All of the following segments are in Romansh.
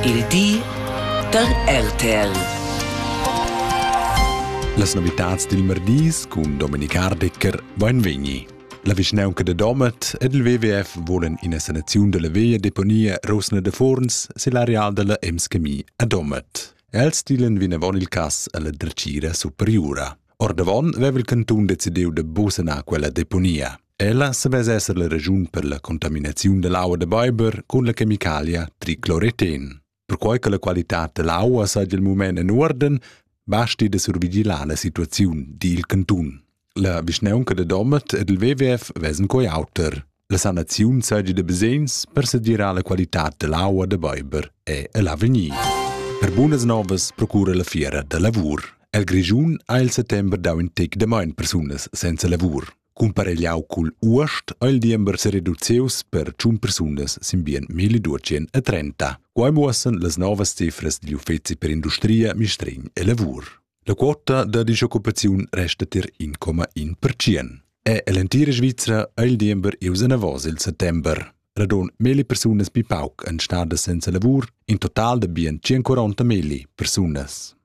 Il di da RTL. Las novitads dil merdis cun Dominik Hardecker vain vegni. La vischnaunca de Domat ed il WWF volen ina sanaziun della via deponia Rosna de Forns sil areal della Emskemi a Domat. Els stilen vinavon il cass alla dretgira superiura. Ordavon veva il cantun decidiu de busanar quella deponia. Ella savess esser la raschun per la contaminaziun dall'aua da beiber cun la chemicalia tricloreten. Perquai che la qualitad dall'aua saja il mument en uorden, basti da survigilar la situaziun dil cantun. La vischnaunca da Domat ed il WWF vessen coi auter. La sanaziun saja da basegns per sedirar la qualitad dall'aua da beiber e l'avegnir. Per bunas novas procura la fiera da lavur. El Grischun ha il settember dau in tec da maun persunas senza lavur. Cumparegliau cugl uost ha il diember sereduzius per tschun persunas sin bien 1230. Quai muossan las novas cifras digl uffeci per industria, mistregn e lavur. La quota da disoccupaziun resta tier 1,1%. E l'entira Svizra ha il diember ius anavos il settember. Radon meli persunas pi pauc en stadas senza lavur, in total da bien 140 meli persunas.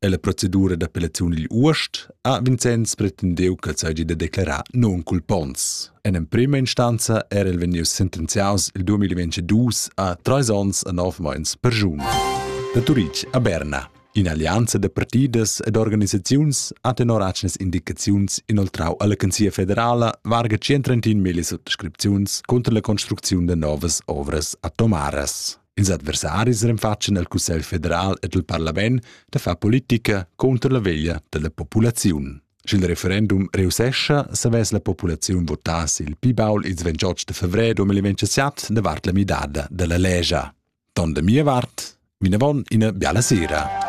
E la procedura d'appellaziun digl uost ha Vincenz pretendeu ch'el seigi da declarar non culpons. En emprema instanza era el vegnius sentenziaus il 2022 a treis onns e nov meins per giun. Da Turitg a Berna. In'allianza da partidas ed organisaziuns ha tenor atgnas indicaziuns inoltrau alla Canzia federala varga 130.000 suttascripziuns contra la construcziun da novas ovras atomaras. Ils adversaris renfatschen el Cussegl federal ed il parlament da far politica contro la veglia della populaziun. Sch'il referendum reussescha, savess la populaziun votar il pi baul ils 28 de febrer 2027 davart la midada della legia. Don da mia vart, vinavon ina biala sera.